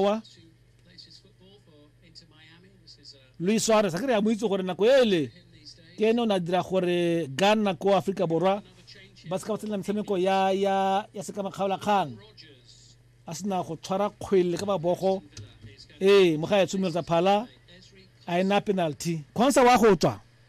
wa Luis Suarez a ke re a mo itse gore nako ele ke ene o ne a dira gore Ghana ko Aforika Borwa ba se ka ba tsenela metshameko ya ya ya se ka makgaola kgang a sena go tshwara kgwele ka mabogo ee mo ga e tshumelo tsa phala a ena penalty khonsa wa go tswa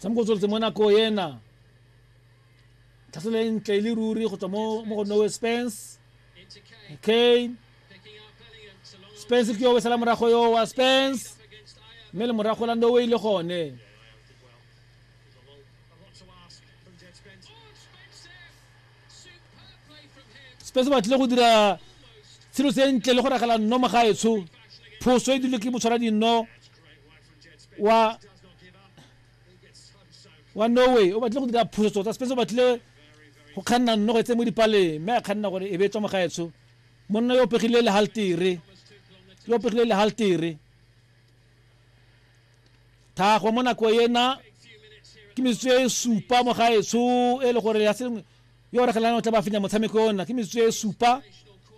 tshameko o tsweletse mo nako ena tlhaselo e ntle e le ruri go tswa mo go nowe spence okay spence ke yo o sala morago yo wa spence mme le morago la nowe ile gone spese ba tlile go dira tshelo se ntle le go ragela nno mo gaetsho phoso e dirile ke motshwara dinno wa wa norway o batlile go dira phoso tota spese o batlile go kganna nno go etse mo dipaleng mme a kganna gore e be tswa mo gaetsho monna yo o pegile lehaltere yo o pegile lehaltere thago mo nako ena ke metsotso e supa mo gaetsho e le gore ya sengwe yo re gelana o tla ba fenya motshameko ona ke metsotso e supa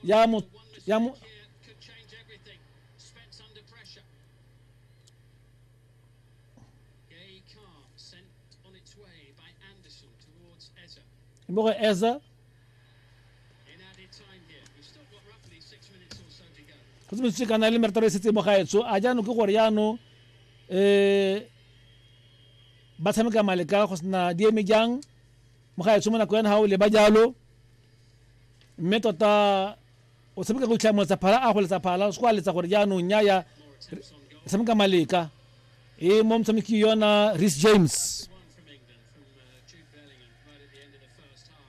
ya mo ya mo mo go eza go tsebetse kana le merataro e setse mo gaetso a jaanong ke gore jaanong um ba tshameka maleka go sena di eme jang mo gaetso mo nako yana ga o leba jalo mme tota o tshameka go itlha moletsa phala a go letsa phala se go a letsa gore jaanong nyaya tshameka maleka e mo motshameki yona ris james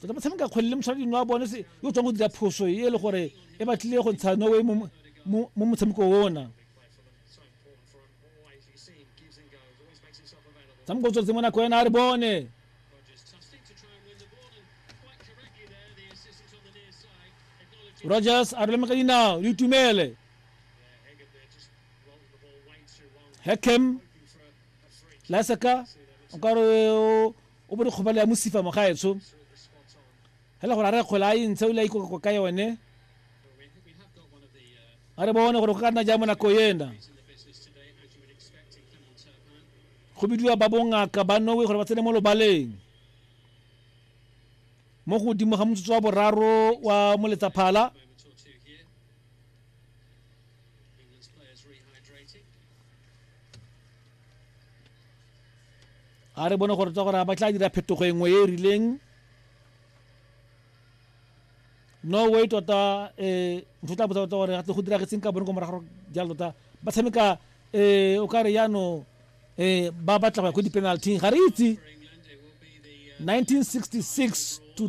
tota motshameka kgwele le moshwadi wa bone se yo tswang go dira phoso e le gore e batlile go ntsha norway mo motshameko ona tshameko tsotse mo nako ena a re bone rogers a roleme ka dinao le itumele hekem laseka o ka re o bo dikgobalo ya mosifa mogaetsho fela gore a re kgole a e ntshe o le a ikokako ka yone a re bone gore go ka nna jang mo nako ena go bidiwa ba bongaka ba nowe gore ba tsene mo lobaleng mo godimo ga motsotso wa boraro wa moletsaphala a re bone gore tsa gore a ba tla dira phetogo e nngwe e e rileng no way tota um ntho tla botsa tota gore gatle go diragetseng ka bone ko morago jalo tota ba tshameka um o ka re yano um ba batla go ya ko di-penalty ga re itse 1966 to